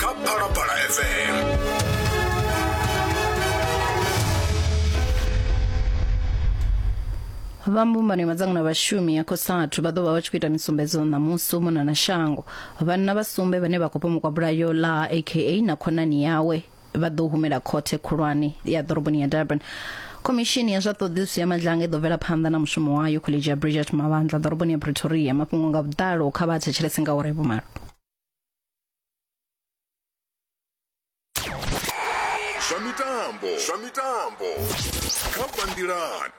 kha phalaphala fm vha mbumbano ya madzangano a vhashumi ya cosatu vha ḓo vha vha tshi khou ita misumbedzo ṋamusi u mona na shango vhanna vha sumbe vhane vha khou pomokwa bulayo ḽa aka na khonani yawe vha ḓo humela khothe khulwane ya ḓoroboni ya durban khomishini ya zwa ṱhoḓisiso ya madlanga i ḓo bvela phanḓa na mushumo wayo khoḽedzhi ya bridget mavandla ḓoroboni ya pretoria mafhungo nga vhuḓalo kha vha thetshelese nga uri vhumalo zwa mitambo zwa mitambo kha bandilan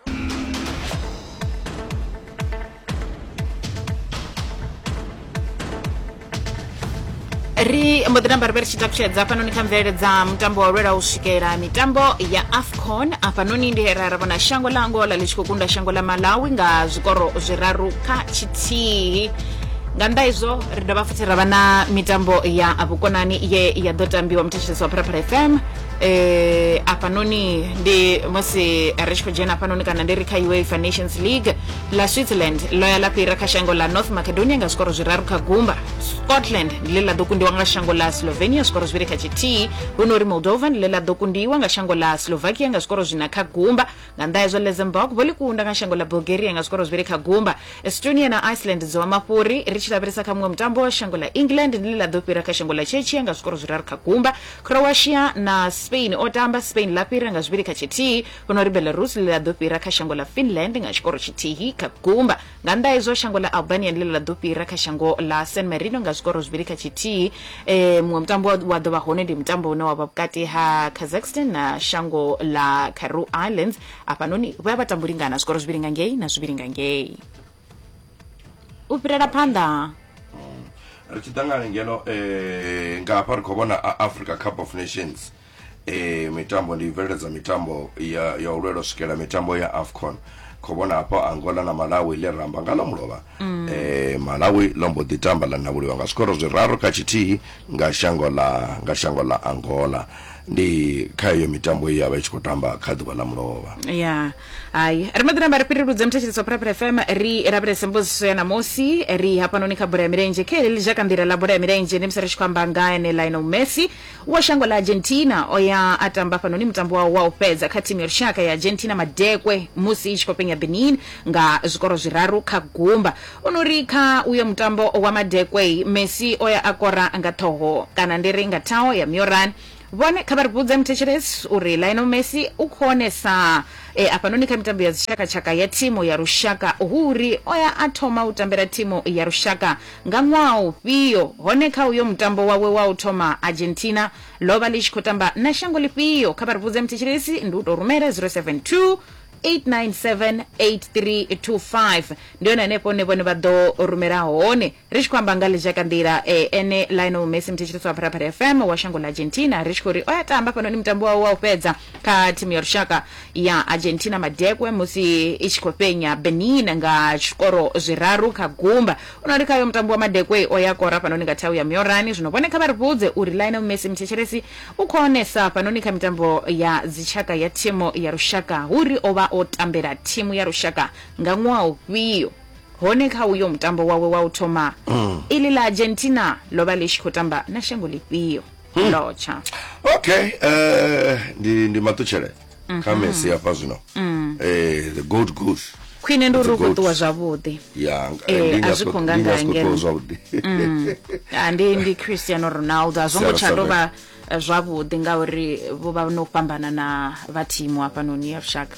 ri mbo ḓi namba ri vhe ri tshi takutshedza hafhanoni kha mvelele dza mutambo wa lwela u swikela mitambo ya afcon hafhanoni ndi ra ra vhona shango ḽa angola ḽi tshi khou kunda shango ḽa malawi nga zwikoro zwiraru kha tshithihi nga nnḓa izwo ri dovha futhi ra vha na mitambo ya vhukonani ye ya ḓo tambiwa muthetshelesi wa phalaphala fm um eh, afhanoni ndi musi ri tshi khou dzhena afhanoni kana ndi ri kha uefa nations league ḽa switzerland ḽo ya ḽa fhira kha shango ḽa north macedonia nga zwikoro zwiraru kha gumba scotland ndi ḽe ḽa ḓo kundiwa nga shango ḽa slovenia zwikoro zwivhili kha tshithihi hu no uri moldova ndi ḽe ḽa ḓo kundiwa nga shango ḽa slovakia nga zwikoro zwina kha gumba nga nnḓa hezwo luxembourg vho ḽi kunda nga shango ḽa bulgaria nga zwikoro zwivhili kha gumba estonia na iceland dzo vha mafhuri ri tshi lavhelesa kha muṅwe mutambo wa shango ḽa england ndi ḽi ḽa ḓo fhira kha shango ḽa chechia nga zwikoro zwiraru kha gumba croatia na spain o tamba spain ḽa fhira nga zwivhili kha tshithihi huno ri belarus ḽi ḽa ḓo fhira kha shango ḽa finland nga tshikoro tshithihi kha gumba Nga nnḓa ha izwo, shango ḽa Albania ndi ḽe ḽa ḓo fhira kha shango ḽa San Marino nga zwikoro zwivhili kha tshithihi. E, muṅwe mutambo wa wa ḓo vha hone ndi mutambo une wa vha vhukati ha Kazakhstan na shango ḽa Carew Islands. Hafhanoni vho ya vha tambo lingana zwikoro zwivhili nga ngei na zwivhili nga ngei. U fhirela phanḓa. ri tshi ḓa nga ngeno eh, nga hafha ri khou vhona a africa cup of nations ee mitambo ndi bveledza mitambo ya, ya u lwela u swikela mitambo ya afcon khou vhona hafho angola na malawi ḽe ramba nga ḽa mulovha mm. e, malawi ḽo mbo ḓi tamba ḽa navhuliwa nga zwikoro zwiraru kha tshithihi nga shango ḽa nga shango ḽa angola ndi kha iyo mitambo ye ya vha i tshi khou tamba kha ḓuvha ḽa mulovha ya hayi ri maḓi namba ri fhireludze muthetshelesi wa phuraphura fm ri lavhelese mbudziso ya namusi ri hafhanoni kha bola ya milenzhe kha heḽi ḽi zhaka nḓila ḽa bola ya milenzhe ndi musi ri tshi khou amba nga ene lionel messi Wa shango ḽa Argentina o ya a tamba fhanoni mutambo wawe wa u fhedza kha thimu ya lushaka ya Argentina madekwe musi i tshi khou fhenya Benin nga zwikoro zwiraru kha gumba. O no ri kha uyo mutambo wa madekwe, Messi o ya a kora nga ṱhoho kana ndi ri nga thaho ya Mioran. Vhone kha vha ri vhudze muthetshelesi uri Lionel Messi u khonesa e a fhanoni kha mitambo ya dzitshakatshaka ya thimu ya lushaka hu uri o ya a thoma u tambela thimu ya lushaka Nga ṅwaha ufhio, hone kha uyo mutambo wawe wa u thoma Argentina ḽo vha ḽi tshi khou tamba na shango ḽifhio? Kha vha ri vhudze muthetshelesi, ndi u tou rumela 072 897 8325 ndi hone hanefho hune vhone vha ḓo rumela hone ri tshi khou amba nga ḽizhakanḓila e, ene Lionel Messi muthetshelesi wa Phalaphala FM wa shango ḽa Argentina ri tshi khou ri o ya tamba fhanoni mutambo wawe wa u fhedza kha thimu ya lushaka ya Argentina madekwe musi i tshi khou fhenya Benin nga zwikoro zwiraru kha gumba. U no ri khayo mutambi wa madekwe o ya kora fhanoni nga thau ya Miorani. Zwino vhone kha vha ri vhudze uri Lionel Messi muthetshelesi u khou onesa fhanoni kha mitambo ya dzitshaka ya thimu ya lushaka hu ri o vha o tambela thimu ya lushaka nga ṅwaha ufhio. Hone kha uyo mutambo wawe wa u thoma, iḽi ḽa Argentina ḽo vha ḽi tshi khou tamba na shango ḽifhio? hmm. ndotsha okay uh, ndi ndi matutshele mm -hmm. kha mesi hafha zwino mm. eh, the gold goose khwine ndi uri u khou ṱuwa zwavhuḓi eh, a zwi khou nga nga ngeno mm. ah, ndi ndi cristiano ronaldo a zwo ngo tsha tou vha eh, zwavhuḓi ngauri vho vha no fhambana na vha thimu hafhanoni ya lushaka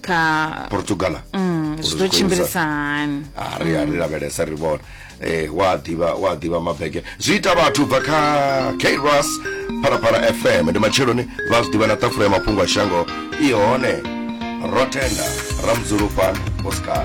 kha portugala mm, zwi ḓo tshimbilisa hani ah, ri a ri lavhelesa ri vhona eh wa ḓivha wa ḓivha mabege zwi ita vhathu bva kha kras phalaphala fm ndi matsheloni vha zwi ḓivha na ṱafula ya mafhungo a shango i hone ro tenda ra mudzulufhana oscar